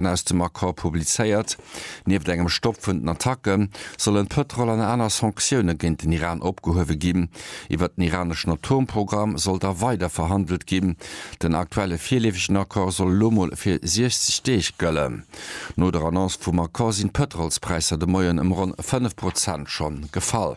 Fakten aus dem Accord publizéiert. Nieft engem Stopp vun den Attacke sollen d'Pëtrol an aner Sanktioune géint den Iran opgehuewe ginn. Iwwert den iraneschen Atomprogramm soll da weider verhandelt ginn. Den aktuelle virleefegen Accord soll elo mol fir 60 Deeg gëllen. No der Annonce vum Accord sinn d'Pëtrolspräisser de Moien ëm ronn 5 Prozent schonn gefall.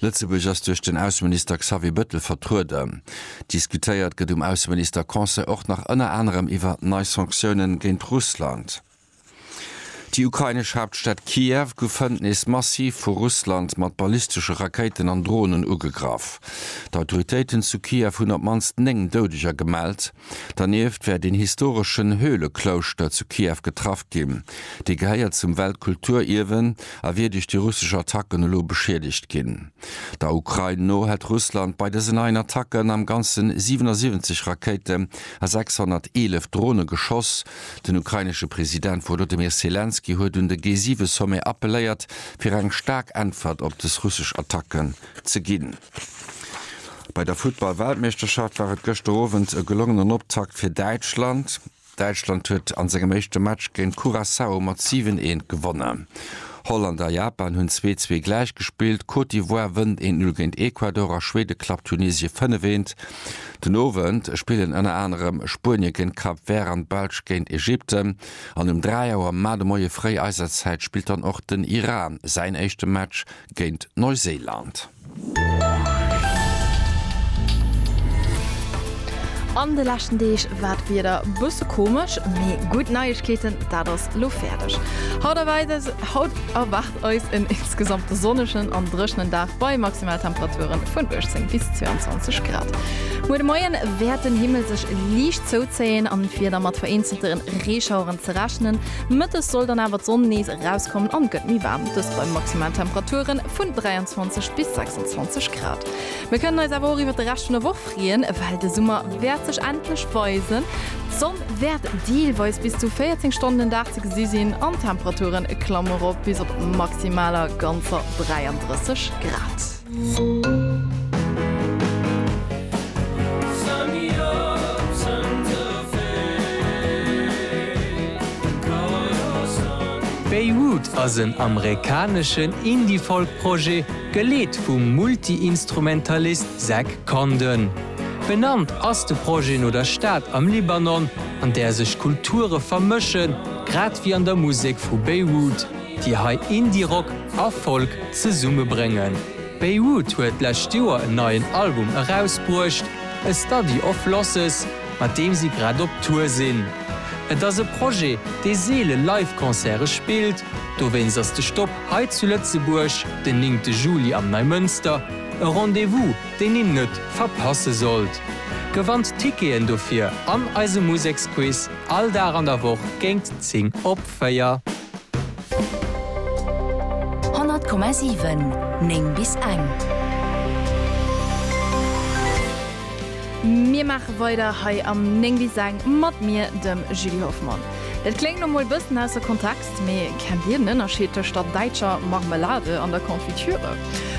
Lëtzebuerg ass duerch den Ausseminister Xavier Bëttel vertrueden. Diskutéiert gëtt um Ausseminister-Conseil och nach ënner anerem iwwer nei Sanktiounen géint Russland. Déi ukrainesch Haaptstad Kiew gouf hënt nees massiv vu Russland mat ballistesche Rakéiten an Dronen ugegraff. D'Autoritéiten zu Kiew hunn op d'mannst 9 Doudeger gemellt. Dernieft wäert een historeschen Höhleklouschter zu Kiew getraff ginn. Dee gehéiert zum Weltkulturierwen a wier duerch déi russesch Attacken elo beschiedegt ginn. Der Ukrain no hätt Russland bei dësen neien Attacken am Ganze 77 Rakéiten a 611 Drone geschoss. Den ukrainesche President Wolodymyr Selenskyj huet un de G7-Sommet appelléiert, fir eng staark Äntwert op dës russesch Attacken ze ginn. Bei der Futtball-Weltmeeschterschaft war et gëschter Owend e gelongenen Optakt fir Däitschland. Däitschland huet an sengem éischte Match géint Curaçao mat 7, 1 gewonnen. Holland a Japan hunn 2, 2 gläich gespillt. Côte d'Ivoire wënnt 1, 0 géint Ecuador a Schwede klappt Tunesie 5, 1. Den Owend spillen ënner anerem Spuenie géint Cap Vert an d'Belsch géint Ägypten. An um 3 Auer, mar de Moie fréi eiser Zäit, spillt dann och den Iran säin éischte Match géint Neuséiland. An de leschten Deeg war d'Wieder bësse komesch, mee gutt Neiegkeeten, dat ass lo fäerdeg. Haut erwäit eis, haut erwaart eis en insgesamt sonnegen an dréchenen Dag bei Maximaltemperaturen vun 18 bis 22 Grad. Muer de Moien wäert den Himmel sech liicht zouzéien an d'Wieder mat vereenzelte Reeschaueren ze rechnen. Mëttes soll dann awer d'Sonn nees erauskommen an et gëtt méi waarm, dëst bei Maximaltemperaturen vun 23 bis 26 Grad. Mir kënnen eis awer och iwwert de Rescht vun der Woch freeën, well de Summer wäert sech endlech weisen. D'Sonn wäert deelweis bis zu 14 Stonnen den Dag ze gesi sinn an d'Temperature klamme rop bis op maximaler ganzer 33 Grad. Beirut ass en amerikaneschen Indie-Folk-Projet, geleet vum Multi-Instrumentalist Zach Condon. Benannt ass de Projet no der Stad am Libanon, an där sech Kulture vermëschen, grad wéi an der Musek vu Beirut. déi hei Indie-Rock a Folk zesumme bréngen. Beirut huet d'lescht Joer en neien Album erausbruecht, A Study of Losses, mat deem si grad op Tour sinn. Et ass e Projet, dee seele Live-Concerte spillt, dowéinst ass de Stop hei zu Lëtzebuerg den néngte Juli am Neimënster e Rendez-vous, deen een net verpasse sollt. Gewannt Ticketen dofir an eisem Museksquiz all Dag an der Woch géint 10 op 4. 100,7 9 bis eng. Mir maache weider hei am 9 bis eng mat mir, dem Julie Hoffmann. Et kléngt lo mol bëssen ausser Kontext, mee kennt Dir den Ënnerscheed tëscht der däitscher Marmelade an der Confiture?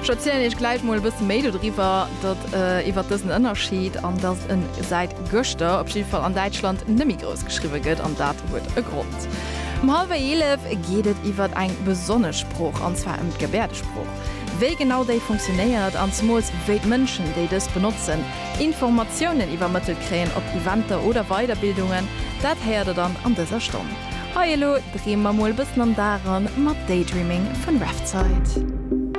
Ech erzielen Iech gläich mol e bësse méi dodriwwer, datt iwwer dësen Ënnerscheed, an datt en säit gëschter op jidde Fall an Däitschland net méi grouss geschriwwe gëtt, an dat huet e Grond. Wort. Um hallwer 11 geet et iwwert eng besonnesch Sprooch, an zwar ëm d'Gebäerdesprooch. Wéi genau déi funktionéiert, an zemools wéi d'Mënschen, déi dës benotzen, Informatiounen iwwermëttelt kréien op Eventer oder Weiderbildungen, dat héiert der dann an dëser Stonn. Hei elo dreeme mer mol e bëssen am Dag eran mat Daydreaming vun Revtide.